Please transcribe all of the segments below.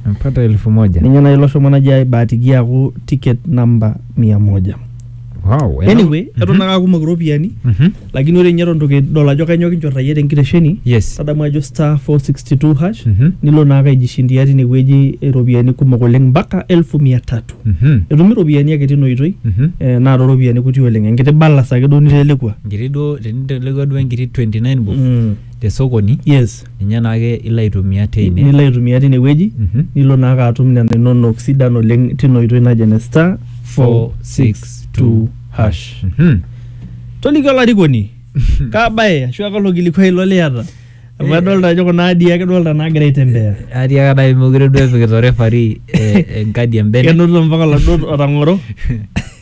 Napata elfu moja. Ninye nai ilo shomo naji aibahatikia aaku ticket number mia moja. Wow. ena- Anyway, eton ake aakumok iropiyiani Mhm. lakini ore ninye eton itu kidol ajo kainyoo kinchorrayie tenkitesheni Yes. tadamu ajo star 462 hash Mhm. nilo naake aijishindia tinewueji iropiyiani kumok oleng mpaka elfu mia tatu Mhm. etumi iropiyiani ake tina oitoi Mhm. eh, naa tooropiyiani kuti oleng enkiti balas ake duo nitelekua Enkiti duo tenitelekua duo enkiti 29 bob Mm. te sokoni. yes ninye naake ilo aitumia teine. nilo aitumia tine wueji Mhm. nilo naake atum nena inonok sidan oleng tina oitoi naji ene star 462 hash Mhm. toliki olarikoni kaa bae ashu aa kalo kilikuai ilo liata amu Eh. adolta ajo kuna adii ake dolta naagira aitembea Atii ake nai mekure duo epikita orefari eh, enkadi embene. kenoto mpaka oladuo otang'oro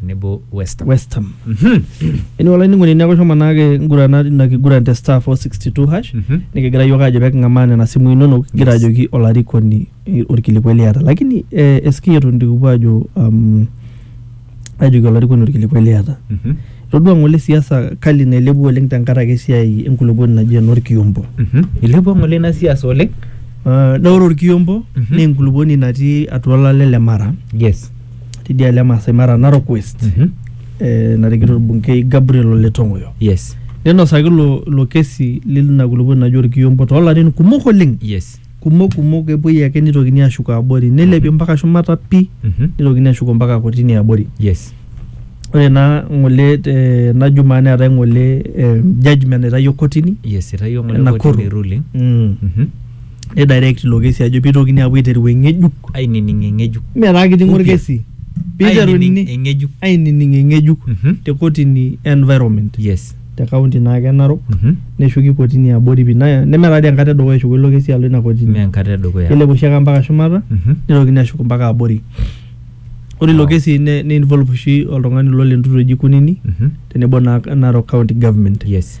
tenebo West Ham. West Ham. Mhm. Anyway, olainining'oni neeku shomo naake ingurana ina kiguran te star 462 hash Mhm. nikigira yiok aajo peking'amaa nena simui inonok kigira Yes. ajoki olarikoni eh, orkilikuai liata lakini eh, eski eton itu kipuo aajo um, ajoki olarikoni orkilikuai liata Mhm. itodua ng'ole siasa kali nailepua oleng tenkaraki esiai enkulupuoni naji enorkiombo Mhm. Ilepua ng'ole ina siasa oleng. uh, na ore orkiombo Mhm. naa enkulupuoni natii atua olale le mara Yes. tidialo e Maasai Mara Narok West Mhm. eh, narikito olbunkei Gabriel Ole Tong'oyo yes ninosaki ilo ilo kesi lina kulupuoni naji orkiyombo toolarin kumok oleng yes kumok kumok epuoi ake nitokini ashuko abori nilepi mpaka shumata pi Mhm. nitokini ashuko mpaka kotini abori yes ore naa ng'ole eh, ena jumaa neetae ng'ole eh, judgment naitayio kotini yes itayio ngole Nakuru. kotini ruling mm. Mhm. Ni direct ilo kesi ajo pitokini apuo aiteru eng'ejuk. Ainining eng'ejuk. Mme taa kiting'o Upya. orkesi. Piteruni Ainining eng'ejuk. ainining eng'ejuk Mhm. te kotini e environment Yes. te kaunti naake e Narok Mhm. neshuki kotini e abori pii na- neme taa dii enkata e dukuya eshuko ilo kesi alo ina Mme kotini. enkata edukuya. Kelep oshi ake mpaka shumata Mhm. nitokini ashuk mpaka abori. Ore ilo Wow. kesi ne ne involve oshi oltung'ani lo le ntutu eji Kunini Mhm. tenebo naa Narok County Government. Yes.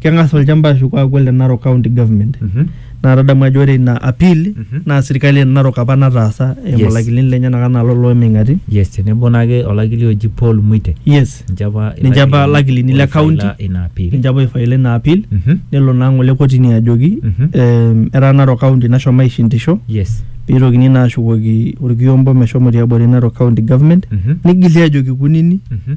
keng'as olchamba ashuko aaku ole Narok County Government Mhm. naa tadamu ajo ore ina appeal Mhm. naa sirkali e Narok apa nataasa eimu Yes. olakilini lenyenak anaa lolo ooming'ati yes tenebo naake olakili oji Paul Mwite yes ninche apa Ninche apa ilakilini le oifaila county. ina appeal ninche apa oifaila ina appeal Mhm. nelo naa ng'ole kotini ajoki Mhm. em, etaa Narok County nashomo aishindisho yes peitokini naa ashukoki orkiombo meshomo tiabori Narok County Government Mhm. nigili ajoki kunini Mhm.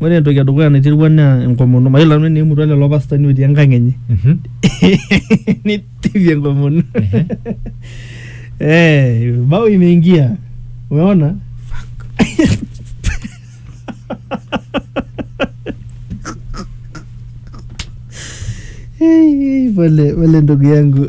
Ore entoki edukuya naiterua naa enkomono. Mayiolo nanu enaa eimutua lelo pastani otii enkang enye neitishipi enkomono eh bao imeingia umeona pole pole ndugu yangu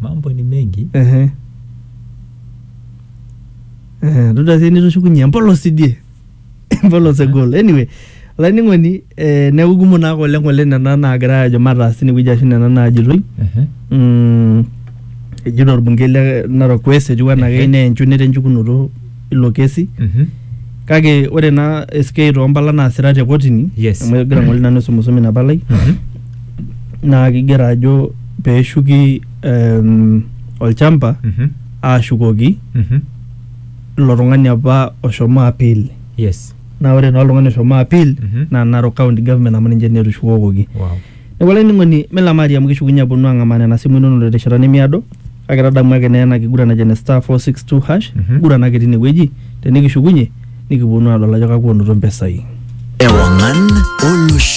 mambo ni mengi Ehe. Eh, todua sii nitushukunye empolos idie empolos egol anyway olainining'oni eh, neeku kumok naake oleng oleng nena naagira ajo mataas tinewueji ashu nena naajitoi Ehe. mm, ejito orbungei le Narok West etiu anaa keyieu neya enchuneta enchukunoto ilo kesi Mhm. kake ore naa SK toompala naasira te kotini Yes. amu egira ng'ole nanu aisumusum ina palai Mhm. naa kigero ajo peeshuki em, olchamba Mhm. aashukoki Mhm. ilo tung'ani apa oshomo appeal Yes. naa ore naa oltung'ani oshomo appeal Mhm. naa Narok County Government amu ninche naa etushukokoki Wow. Neeku olainining'oni mee lamari amu kishukunye aponu ang'amaa nena simui inonok terishata nemiado kake tadamu ake naa ena kiguran naji ene star 462 hash Mhm. nguran ake tine wueji tenikishukunye nikiponu aadol ajo kakua onoto mpesai. Ewang'an olosho.